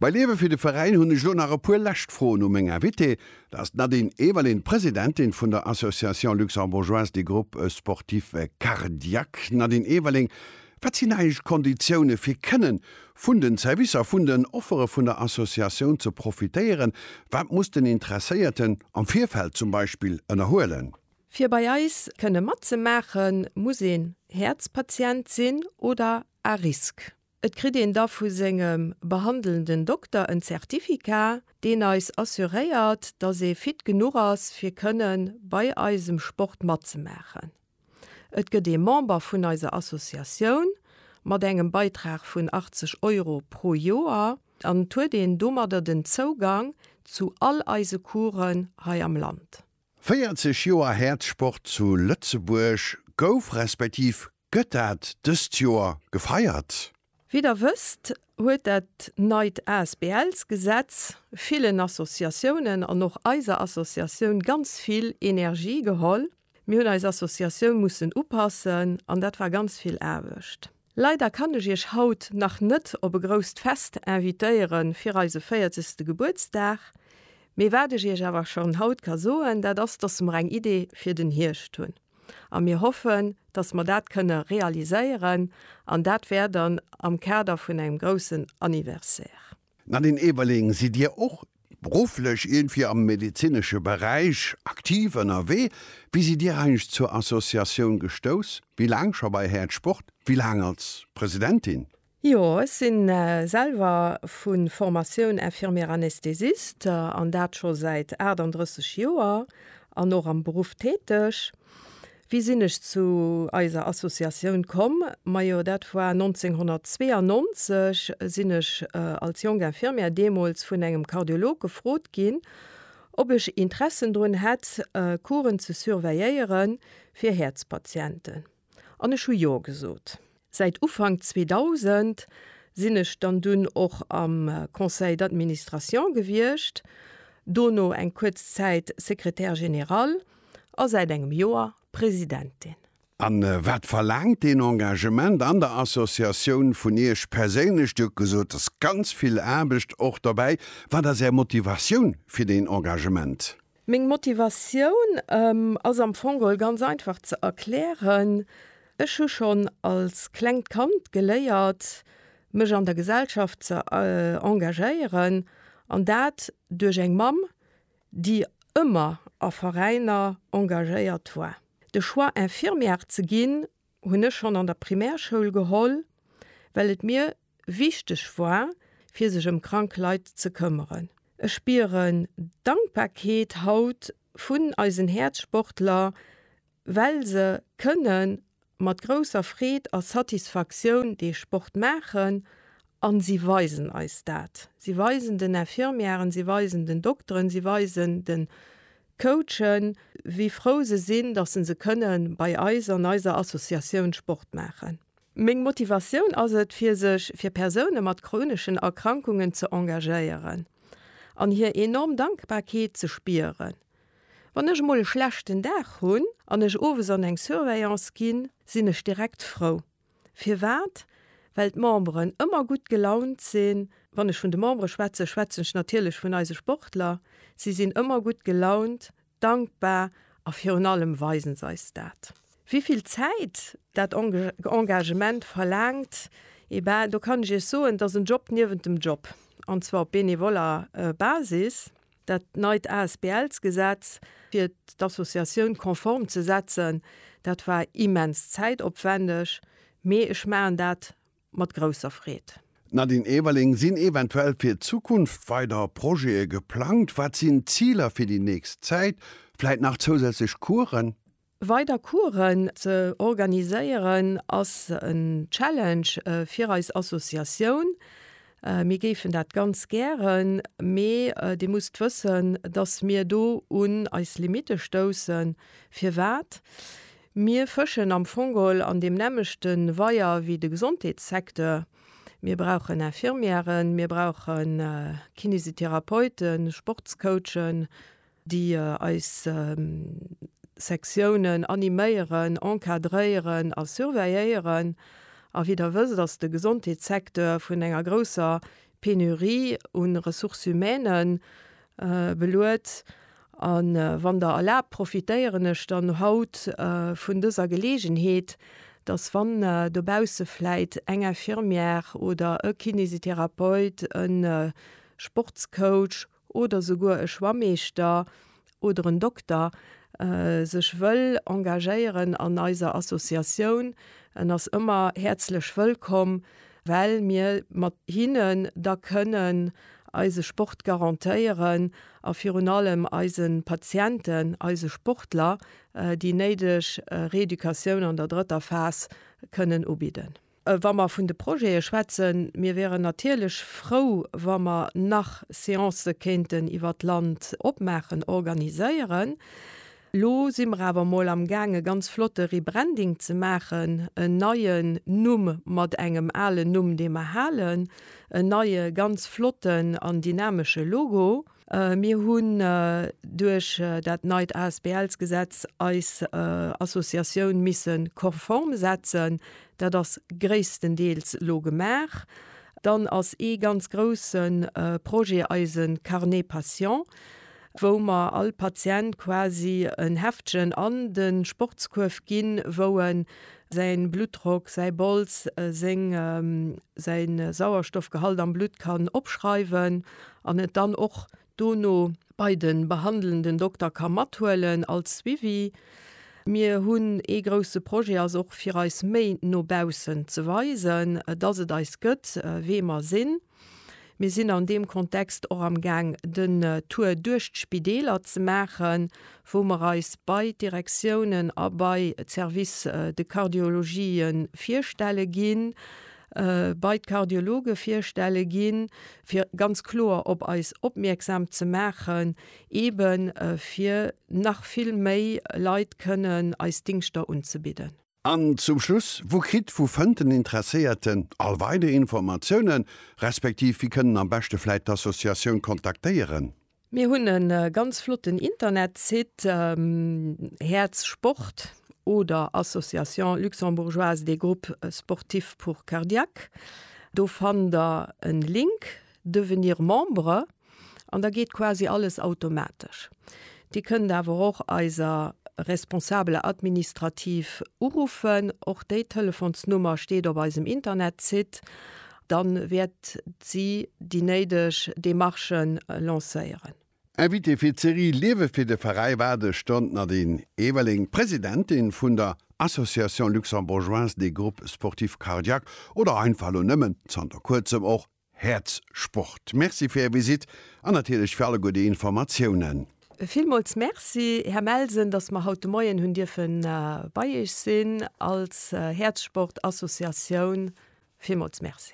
Bei Liewe fir de Veräin hunn ech elo nach e puer lescht Froen u meng Invitée. Dat ass d'Nadine Everlin, Presidentin vun der Association Luxembourgeoise des Groupes Sportifs Cardiaques. Nadine Everling, wat sinn eigentlech d'Konditioune fir kënne vun den Servicer, vun den Offere vun der Associatioun ze profitéieren? Wat muss den Interesséierten am Virfeld zum Beispill ënnerhuelen? Fir bei eis kënne matzemaachen, muss een Häerzpatient sinn oder à risque. Et kritt een da vu sengem behandelnden Dokter en Certificat, deen eis assuréiert, dass ee fit genuch ass, fir kënne bei eisem Sport matzemaachen. Et gëtt ee Member vun eiser Associatioun mat engem Beitrag vun 80 Euro pro Joer an et huet een domadder den Zougang zu all eise Coursen hei am Land. 40 Joer Häerzsport zu Lëtzebuerg, Gouf respektiv gëtt dat dëst Joer gefeiert? Wéi der wësst, huet dat neit ASBLs-Gesetz villen Associatiounen an och eiser Associatioun ganz vill Energie geholl. Mir hunn eis Associatioun mussen upassen an dat war ganz vill Aarbecht. Leider kann ech iech haut nach net op e grousst Fest invitéieren fir eise 40 ste Gebuertsdag, mee wat ech iech awer schon haut ka soen, dat ass dass mer eng Idee fir den Hierscht hunn a mir hoffen dass mer dat kënne realiséieren an dat wär dann am Kader vun engem groussen Anniversaire. D'Nadine Eberling, Sidd Dir och berufflech iergendwéi am medezinesche Beräich aktiv ënnerwee? Wéi sidd Dir eigentlech zur Associatioun gestouss? Wéi laang scho bei Häerzsport? Wéi laang als Presidentin? Jo, ech si selwer vu Formatioun Infirmière anesthésiste an dat scho säit 38 Joer an och am Beruff täteg. Wéi sinn ech zu eiser Associatioun komm? Majo dat war 1992, sinn ech als jonk Infirmière deemools vun engem Kardiolog gefrot ginn, ob ech Interessen drun hätt Couren ze surveilléiere fir Häerzpatienten, an ech hu jo gesot. Säit Ufank 2000 sinn ech dann dunn och am Conseil d'administration gewiescht, dono eng kuerz Zäit Secrétaire général a säit engem Joer Presidentin. A wat verlaangt deen Engagement an der Associatioun vun Iech perséinlech? Dir hutt gesot, et ass ganz vill Aarbecht och dobäi. Wat ass Är Motivatioun fir deen Engagement? Meng Motivatioun ass am Fong geholl ganz einfach ze erklären, Ech hu schonn als klengt Kand geléiert, mech an der Gesellschaft ze engagéieren, an dat duerch eng Mamm, déi ëmmer a Veräiner engagéiert war. De Choix Infirmière ze ginn, hunn ech schonn an der Primärschoul geholl, well et mir wichteg war, fir sech ëm krank Leit ze këmmeren. Ech spieren Dankbarkeet haut vun eisen Häerzsportler, well se kënne mat grousser Freed a Satisfaktioun dee Sport maachen a si weisen eis dat. Si weisen den Infirmièren, si weisen den Dokteren, si weisen de Coachen, wéi frou se sinn, dass se se kënne bei eis an eiser Associatioun Sport maachen. Meng Motivatioun ass et, fir sech fir Persoune mat chroneschen Erkrankungen ze engagéieren an hir enorm Dankbarkeet ze spieren. Wann ech emol e schlechten Dag hunn an ech owes an eng Surveillance ginn, sinn ech direkt frou. Firwat? Well d'Memberen ëmmer gutt gelaunt sinn. Wann ech vun de Membere schwätzen, schwätzen ech natierlech vun eise Sportler. Si sinn ëmmer gutt gelaunt, dankbar a virun allem weisen se eis dat. Wéi vill Zäit dat Engagement verlaangt, eh ben, do kann ech Iech soen, dat ass en Job niewent dem Job, an zwar op benevoller Basis. Dat neit ASBL-Gesetz, fir d'Associatioun konform ze setzen, dat war immens zäitopwändeg, mee ech maachen dat mat grousser Freed. Nadine Everling, Sinn eventuell fir d'Zukunft weider Projete geplangt? Wat sinn d'Ziler fir déi nächst Zäit? Vläit nach zousätzlech Coursen? Weider Coursen ze organiséieren ass en Challenge fir eis Associatioun. Mir géifen dat ganz gären, mee Dir musst wëssen, datt mir do un eis Limitte stoussen. Firwat? Mir fëschen am Fong geholl an deem nämmlechte Weier wéi de Gesondheetssecteur. Mir brauchen Infirmièren, mir brauche Kinesitherapeuten, Sportscoachen, déi eis Sektiounen animéieren, encadréieren a surveilléieren. A wéi Der wësst, ass de Gesondheetssecteur vun enger grousser Penurie un ressources humaines beluet. A wann Der erlaabt, profitéieren ech dann haut vun dëser Geleegenheet, dass wann dobausse vläit eng Infirmière oder e Kinésithérapeute, e Sportscoach oder souguer e Schwammeeschter oder en Dokter sech wëll engagéieren an eiser Associatioun, en ass ëmmer häerzlech wëllkomm, well mir mat hinnen da kënnen eise Sport garantéieren a virun allem eise Patienten, eise Sportler déi néideg Reeducatioun an der drëtter Phas kënnen ubidden. Wa mer vun de Projete schwätzen, mir wäeren natierlech frou, wa mer nach Seancë kéinten iwwer d'Land opmaachen, organiséieren. Elo si mer awer emol amgaang, e ganz flotte Rebranding ze maachen, en neien Numm mat engem alen Numm, dee mer halen, en neie ganz flotten an dynamesche Logo. Mir hunn duerch dat neit ASBLs-Gesetz eis Associatioun misse konform setzen. Dat ass gréisstendeels elo gemaach. Dann ass ee ganz grousse Projet eise Carnet Patient, wou mer all Patient quasi en Heftchen an de Sportskuerf ginn, wou e säi Bluttdrock, säi Bols, seng, säi Sauerstoffgehalt am Blutt kann opschreiwen. an et dann och dono bei de behandelnden Dokter ka mathuelen als Suivi. Mir hunn ee grousse Projet, ass och fir eis méi no baussen ze weisen, dass et eis gëtt, wee mer sinn. Mir sinn an deem Kontext och am Gaang den Tour duerch d'Spideeler ze maachen, wou mer eis bei d'Direktiounen a bei d'Services de cardiologie virstelle ginn, bei d'Kardiologe virstelle ginn, fir ganz kloer op eis opmierksam ze maachen, eben fir nach vill méi Leit kënnen eis Dingschter unzebidden. An zum Schluss, Wou kritt, wou fënnt den Interesséierten all weider Informatiounen, respektiv wéi kënnen am beschte vläit d'Associatioun kontaktéieren? Mir hunn e ganz flotten Internetsite, Häerz Sport oder Association luxembourgeoise des groupes sportifs pour cardiaques. Do fannt der e Link, Devenir membre, an da geet quasi alles automatesch. Dir kënnt awer och eiser Responsable administrative uruffen, och déi Telefonsnummer steet op eisem Internetsite. Dann wäert si déi néideg Demarche lancéieren. Invitée fir d'Serie Liewe fir de Veräi war de Stonn Nadine Everling, Presidentin vun der Association Luxembourgeoise des Groupes Sportifs Cardiaques oder einfach elo nëmmen zanter kuerzem och Häerzsport. Merci fir Är Visite an natierlech fir alleguer déi Informatiounen. Villmools Merci, Här Melsen, dass mer haut de Moien hunn dierfe bei Iech sinn als Häerzsport-Associatioun. Villmools Merci.